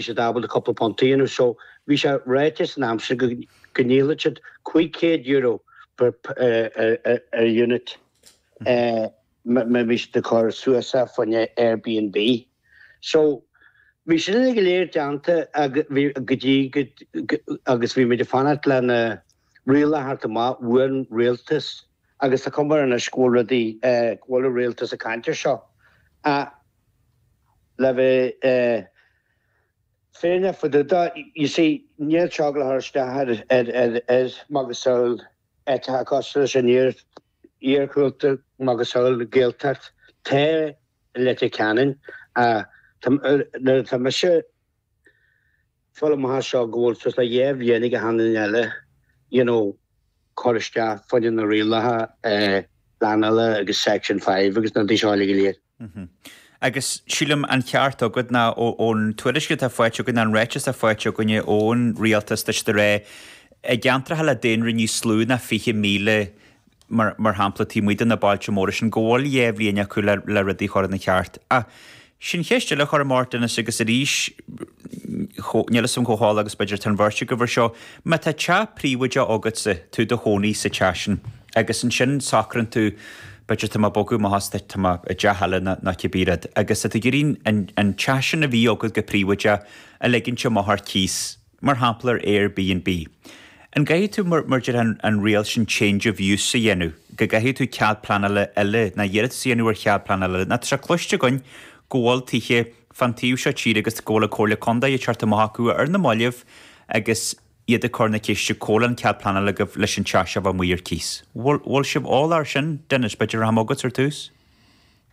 he said ah bhuel cúpla punt you know so bhí sé ráite san am sin go go ndíolfadh siad cúig chéad euro per ar unit má bhí siad ag cur suas ar faoin Airbnb so bhí sin go léir déanta agus bhí go dtí agus bhí muid ag fanacht lena rialacha a theacht amach ón rialtas agus tá cuma air anois go bhfuil rudaí go bhfuil an rialtas ag caint air seo ach le bheith fírinneach fá dtaobh de, you see, níl teaghlach thar isteach ar macasamhail áiteacha cosúil leis an iargúlta, macasamhail na Gaeltachta i Leitir Ceanainn, nuair atá mise. foghlamtha as seo go bhfuil suas le dhá bhliain ag achan duine eile you know cur isteach fá choinne na rialacha pleanála agus section five agus na rudaí seo uilig go léir. Agus sílim an ceart agat nó ón tuairisc atá faighte againn an ráiteas atá faighte againne ón rialtas tá siad ag rá i gceantracha le daonra níos lú ná fiche míle mar shampla, taobh amuigh de na bailte móra sin, go bhfuil dhá bhliain acu le rudaí a chur ina cheart. Ach sin ceist eile a chuirim ort Dennis agus arís níl fhios a'm chomh heolach agus b'fhéidir atá an bheirt agaibh ar seo, má tá teach príobháideach agatsa, tú i do chónaí sa teach sin agus ansin socraíonn tú, b'fhéidir tá mé ag bogadh amach as, tá mé i dteach eile nó cibé rud agus tá tú ag iarraidh an teach sin a bhí agat go príobháideach a ligint amach ar cíos. Mar shampla ar AirBnB. An gcaithfidh tú, mar a deir an riail sin change of use a dhéanamh, go gcaithfidh tú cead pleanála eile, nó iarratas a dhéanamh ar chead pleanála eile? Nó tá sé cloiste againn go bhfuil tithe fán taobh seo tíre agus go bhfuil an Comhairle Contae ag teacht amach chucu ar na mallaibh agus iad ag cur na ceiste cá bhfuil an cead pleanála agaibh leis an teach seo a bheith amuigh ar cíos. Bhfuil sibh eolach ar sin? Dennis, b'fhéidir rachaidh mé chugat ar tús?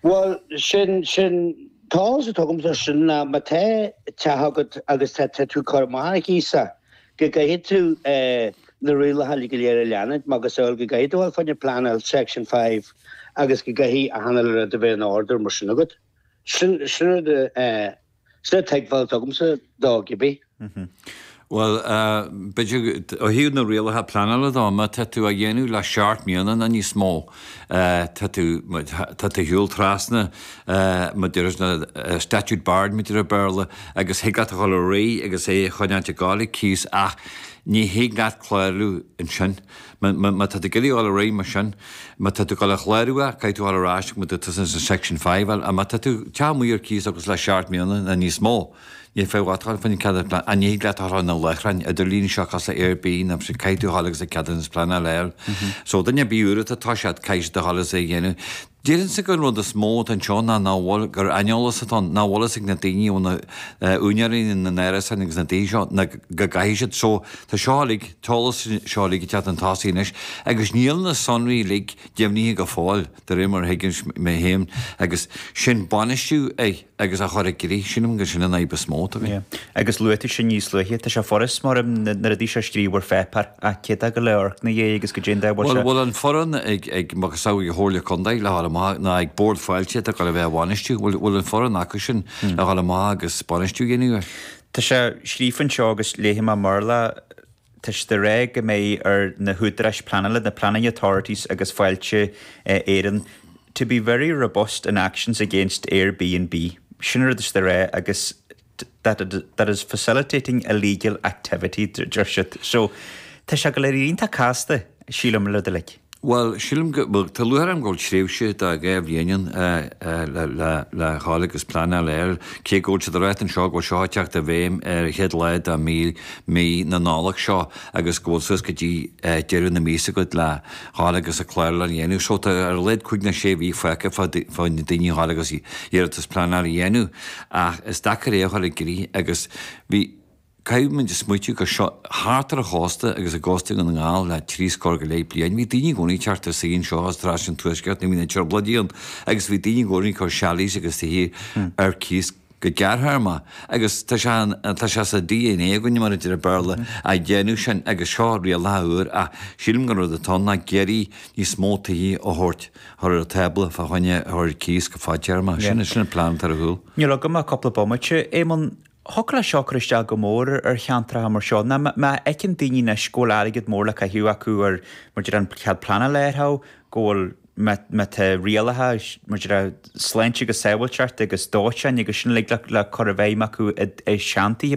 Bhuel, sin, sin, an t-eolas atá agamsa, sin ná má tá teach agat agus tá tá tú cur amach ar chíos a, go gcaithfidh tú na rialacha go léir a leanúint macasamhail go gcaithfidh tú a ghabháil fá choinne pleanáil Section Five agus go gcaithfidh achan uile rud a bheith in order mar sin agat. Sin, sin rud a. Sin an tuigbheáil atá agamsa dó cibé. Bhuel, b'fhéidir ó thaobh na rialacha pleanála dó, má tá tú á dhéanamh le seacht mbliana nó níos mó, tá tú, tá tú ar shiúl trasna, mar a deir na, statute barred mar a deir an Béarla, agus thig leat a dhul ar aghaidh agus é a choinneáilt ag gabháil ar cíos ach ní thig leat clárú ansin. Má tá tú ag iarraidh dul ar aghaidh mar sin, má tá tú ag dul a chlárú é, caithfidh tú dhul ar ais go dtí tús an Section Five é. Má tá do theach amuigh ar cíos agus le seacht mbliana nó níos mó, níl feidhm duit a dhul fá choinne ceadaithe pleanála. Ach ní thig leat é a chur ar na láithreáin idirlíne seo cosúil le Airbnb, nó ansin caithfidh tú dhul agus an ceadúnas pleanála a fháil. So duine ar bith úr atá, tá siad, caithfidh siad a dhul agus é a dhéanamh. Deirimse gur an rud is mó atá anseo ná nach bhfuil, gur aineolas atá ann, nach bhfuil a fhios ag na daoine, úinéirí na n-árasáin agus na daoine seo ná go gcaithfidh siad seo, tá seo uilig, an t-eolas seo uilig ag teacht chun tosaigh anois agus níl na sonraí uilig deimhnithe go fóill, de réir mar a thuigimse é féin agus sin a bhainistiú a. agus a chur i gcrích, sílim gur sin an fhadhb is mó atá againn. Agus luaigh tú sin níos luaithe, tá sé furast go leor na rudaí seo a scríobh ar pháipéar, ach cé tá ag gabháil a amharc ina dhiaidh agus cad é an dóigh? Bhfuil an foireann ag macasamhail Chomhairle Contae, le ghabháil amach, ná ag Bord Fáilte atá ag gabháil a bheith á bhainistiú, bhuel, bhfuil an foireann acu sin, le ghabháil amach, agus bainistiú a dhéanamh air? Tá sé scríofa anseo agus léifidh mé mar le. tá siad a rá go mbeidh ar na húdaráis pleanála, na planning authorities agus Fáilte Éireann, to be very robust in actions against Airbnb, sin an rud atá siad a rá, agus that that is facilitating illegal activity, deir siad. So, tá sé ag gabháil a bheith iontach casta, sílim, uilig go léir. Bhuel, sílim go, bhuel, tá luaite ann go bhfuil tréimhse de dhá bhliain ann le ghabháil agus pleanáil a fháil air, cé go bhfuil siad ag rá anseo go bhfuil seo ag teacht i bhfeidhm ar an chéad lá de mhí, mí na Nollag seo agus go bhfuil suas go dtí deireadh na míosa agat le ghabháil agus an clárú a dhéanamh. So tá ar a laghad cúig nó sé mhí fágtha ag daoine a ghabháil agus iarratas pleanála a dhéanamh ach is deacair é a chur i gcrích agus bhí, Caithfimid a smaoitiú go seo, go háirithe thart ar an chósta agus i gCósta Dhún na nGall le trí scór go leith bliain, bhí daoine i gcónaí ag teacht anseo as an Tuaisceart nuair bhí na Trioblóidí ann agus bhí daoine i gcónaí ag cur chalets agus tithe ar cíos go gearrthéarmach agus tá sé tá sé sa dna againne, mar a deir an Béarla, a dhéanamh sin agus seo rialacha úra ach sílim gur an rud atá ann ná ag iarraidh níos mó tithe a thabhairt, a chur ar an tábla fá choinne a chur ar cíos go fadtéarmach. Sin sin an plean atá ar a chúl. Níl agam ach cúpla bomaite, Éamonn. Thiocfadh leis seo cur isteach go mór ar cheantracha mar seo ná má fheiceann daoine anois go bhfuil airgead mór le caitheamh acu ar maidir le an cead pleanála a iarraidh, go bhfuil má tá rialacha maidir le sláinte agus sábháilteacht agus dóiteáin agus sin uilig le cur i bhfeidhm acu i seantithe.